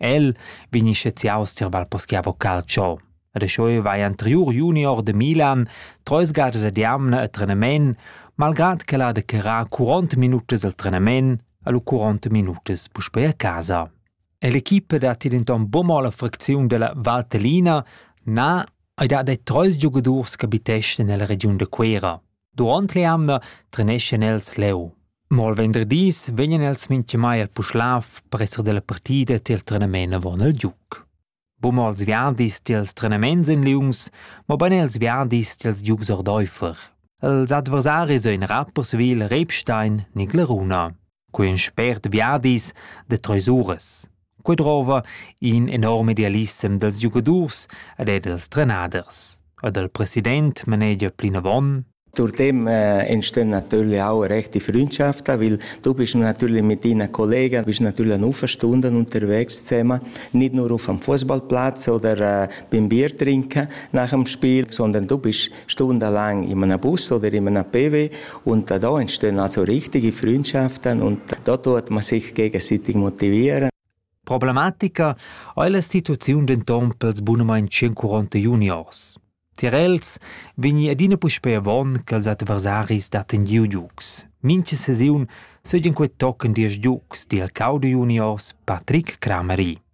El vegni sceziaus tier Valposchiavo Calcio. Rescheu vai anteriur junior de Milan treis gadas ad jamna a trenamen, malgrad che el ha declarà 40 minutas al trenamen a lu 40 minutas puspei a casa. E l'equipa dat denton buca la fracziun della Valtellina na ai dat ei treis giugadurs che habiteschan nella regiun de Cuera. Duront l'eamna treneschan els leu. Mo al venderdis vegnan els mintgamai al Puschlav per esser dalla partida tiel trenament avon il giuc. Buma als viadis tiels trenaments in liungs, mo ban els viadis tiels giugs ordeifer. Els adversaris ein rappers Wil Rebstein ni Gleruna. Quei in spert viadis da treis uras. Quei drova in enorm idealissem dals giugadurs ed er dals trenaders. E dal president manegia plinavon Durtem äh, entstehen natürlich auch rechte Freundschaften, weil du bist natürlich mit deinen Kollegen, bist natürlich eine Stunden unterwegs zusammen, nicht nur auf dem Fußballplatz oder äh, beim Bier trinken nach dem Spiel, sondern du bist Stunde lang in einem Bus oder in einem PW und da entstehen also richtige Freundschaften und da tut man sich gegenseitig motivieren. Problematica ha la situaziun denton pels bunamain 140 juniors. Tier els vegni adina puspei avon ch'els adversaris datten giu giugs. Mincha sesiun seigien quei tochen diesch giugs, di el cau de juniors Patrick Kramery.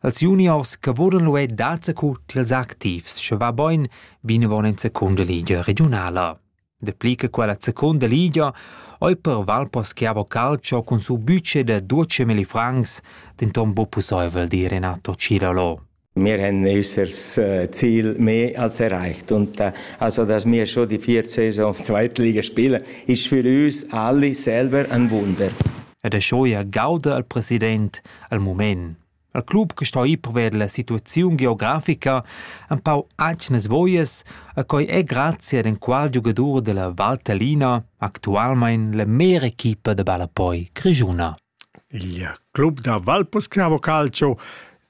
Als juniors che vulan luer dazacu tiels activs, sche va boin vinavon en secunda ligia regiunala. Dapli che quella secunda ligia ei per Valposchiavo Calcio cun su budget da 12.000 francs denton buc pusseivel, di Renato Cilalo. Wir haben äußeres äh, Ziel mehr als erreicht. Und äh, also, dass wir schon die vierte Saison Zweitliga spielen, ist für uns alle selber ein Wunder. ed aschia gauda il president al mument. Il club che sto ir pervers la situaziun geografica empau atgnas voies e quei è grazie ad enqual giugadur della Valtellina actualmein la mera equipa de ballapoi grigiuna. Il club da Valpurschia Calcio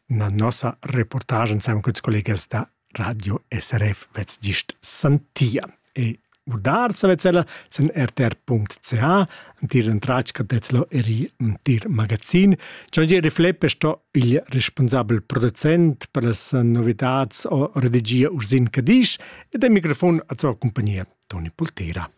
na nossa reportagen siamo con collegas da Radio SRF vezz gist santia. E udar savez ella sen rtr.ca, antir entratg cadezlo eri antir magazin. Giangieri Fleppe sto il responsabel producent per las novidats o redigia Ursin Cadisch ed al microfon a sua compagnia Toni Poltera.